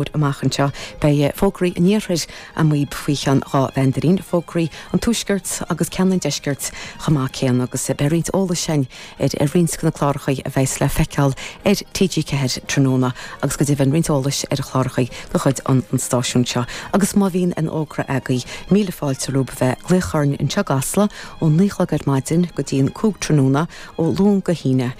uair amach anseo, beidh fógraí an iarthair amuigh faoi cheann dhá mheandairín, fógraí an tuaiscirt agus ceann an deiscirt chomh maith céanna, agus beidh roinnt eolais ann ar roinnt de na cláracha a bheas le feiceáil ar TG4 tráthnóna, agus go deimhin roinnt eolais ar chláracha de chuid an stáisiúin seo. Agus má bhíonn aon fhógra agaibh, míle fáilte romhaibh a bheith ag glaoch orainn anseo i gCasla ón naoi a chlog ar maidin go dtí an cúig tráthnóna, ó Luan go hAoine.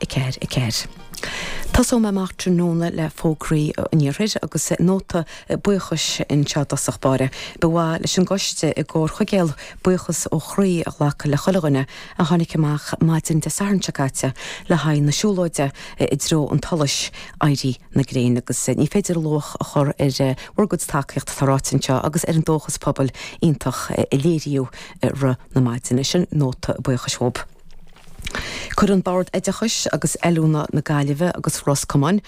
4, 4. Tosóidh mé amach tráthnóna le fógraí an Iarthair agus nóta buíochais anseo i dtosach báire. Ba mhaith leis an gcoiste i gComhar Chuigéal, buíochas ó chroí a ghlacadh le chuile dhuine a tháinig amach maidin Dé Sathairn seo caite le haghaidh na siúlóide i dtreo an tsolais, éirí na gréine agus ní féidir luach a chur ar bhur gcuid tacaíocht atá ráite anseo agus ar an dóchas pobail iontach a léiríodh i rith na maidine. Sin nóta buíochais uathub. Cuireann Bord Oideachais agus Oiliúna na Gaillimhe agus Ros Comáin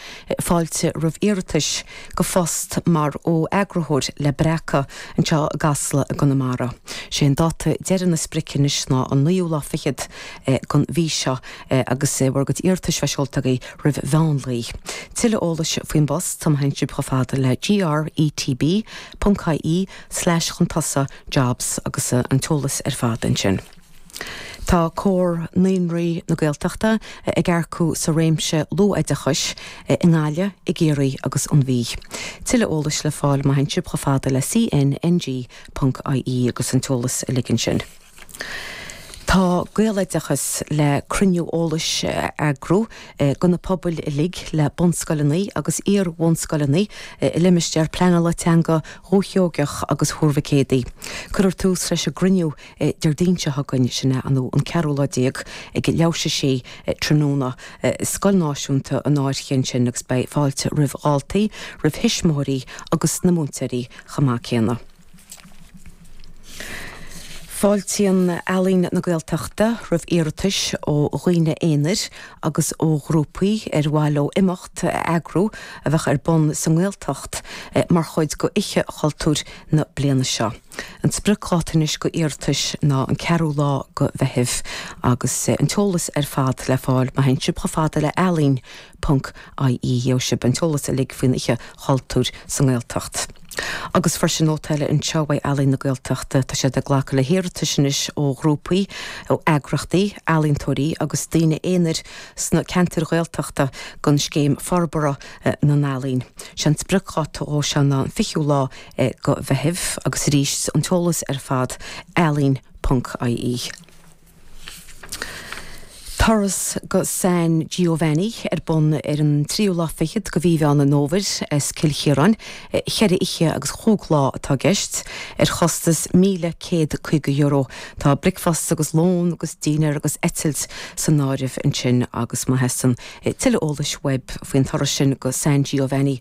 fáilte roimh iarratais go phost mar fho-eagarthóir le Breacadh anseo i gCasla i gConamara. Sé an dáta deiridh nó an sprioc anois ná an naoú lá fichead den mhí seo agus bhur gcuid iarratais a bheith seolta agaibh roimh mheánlae. Tuilleadh eolais faoin bpost má théann sibh chomh fada le GRETB.ie slash chun tosaigh jobs agus an t-eolas ar fad ansin. Tá Comhar Naíonraí na Gaeltachta ag earcú sa réimse luathoideachais i nGaillimh, i gCiarraí agus an Mhí. Tuilleadh eolais le fáil, má théann sibh chomh fada le cnng.ie agus an t-eolas uilig ansin. Tá Gaeloideachas le cruinniú eolais a eagrú do na pobail uilig le bunscoileannaí agus iar-bhunscoileannaí i limistéar pleanála teanga Dhúiche Sheoigheach agus Thuar Mhic Éadaigh. Cuirfear tús leis an gcruinniú Déardaoin seo chugainn, sin é an an ceathrú lá déag, ag leathuair théis a sé tráthnóna, i Scoil Náisiúnta an Fhairche ansin agus beidh fáilte roimh dháltaí, roimh thuismitheoirí agus na múinteoirí chomh maith céanna. Fáiltíonn Ealaín na Gaeltachta roimh iarratais ó dhaoine aonair agus ó ghrúpaí ar mhaith leo imeacht a eagrú a bheadh ar bun sa nGaeltacht mar chuid d'Oíche Chultúir na bliana seo. An spriocdháta anois go iarratais ná an ceathrú lá go Mheitheamh agus an t-eolas ar fad le fáil má théann sibh chomh fada le Ealaín ponc IE gheobhaidh sibh an t-eolas uilig faoin Oíche Chultúir sa nGaeltacht. Agus freisin nóta eile anseo uaidh Ealaín na Gaeltachta, tá siad ag glacadh le hiarratais anois ó ghrúpaí, ó eagraíochtaí, ealaíontóirí agus daoine aonair sna ceantair Ghaeltachta don scéim Forbartha na nEalaíon. Sé an spriocdháta dhó seo ná an fichiú lá go Gaillimh, agus arís an t-eolas ar fad ealaín ponc, ie. Turas go San Giovanni ar bun ar an tríú lá fichead de mhí Mheán Fómhair as Cill Chiaráin, cheithre oíche agus chúig lá atá i gceist, ar chostas €1,150. Tá bricfeasta agus lón agus dinnéar agus eitilt san áireamh ansin agus má theastaíonn tuilleadh eolais uaibh faoin turas sin go San Giovanni,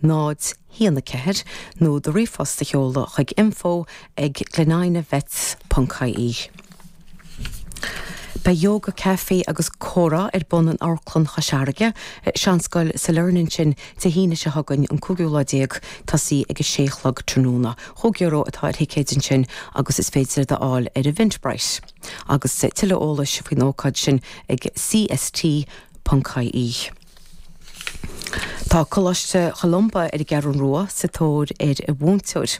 0, 1, 4, nó do ríomhphost a sheoladh chuig info ag glenina vets ponc ie. Beidh Yoga Café agus Comhrá ar bun in Amharclann Chois Fharraige, Seanscoil Sailearna sin Dé hAoine seo chugainn an cúigiú lá déag tosaí ag a sé a chlog tráthnóna. Chúig euro atá ar thicéid ansin agus is féidir iad a fháil ar Eventbrite. Agus tuilleadh eolais faoin ócáid sin ag cst. ie. Tá Coláiste Cholumba ar an gCeathrú Rua sa tóir ar mhúinteoir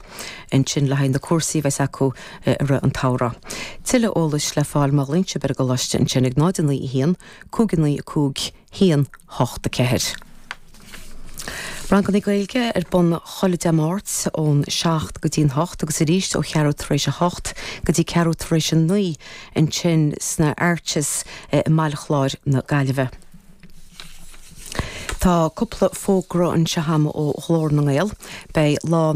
ansin le haghaidh na cúrsaí a bheas acu i rith an tsamhraidh. Tuilleadh eolais le fáil má ghlaonn sibh ar an gcoláiste ansin ag 0 9 1 5 9 5 1 8 4. Ranganna Gaeilge ar bun chuile Dé Máirt ón 7 go dtí'n 8 agus arís ó cheathrú tar éis a hocht go dtí ceathrú tar éis a naoi ansin sna Arches i mBaile Chláir na Gaillimhe. Tá cúpla fógra anseo agam ó Ghlór na nGael. Beidh Lá.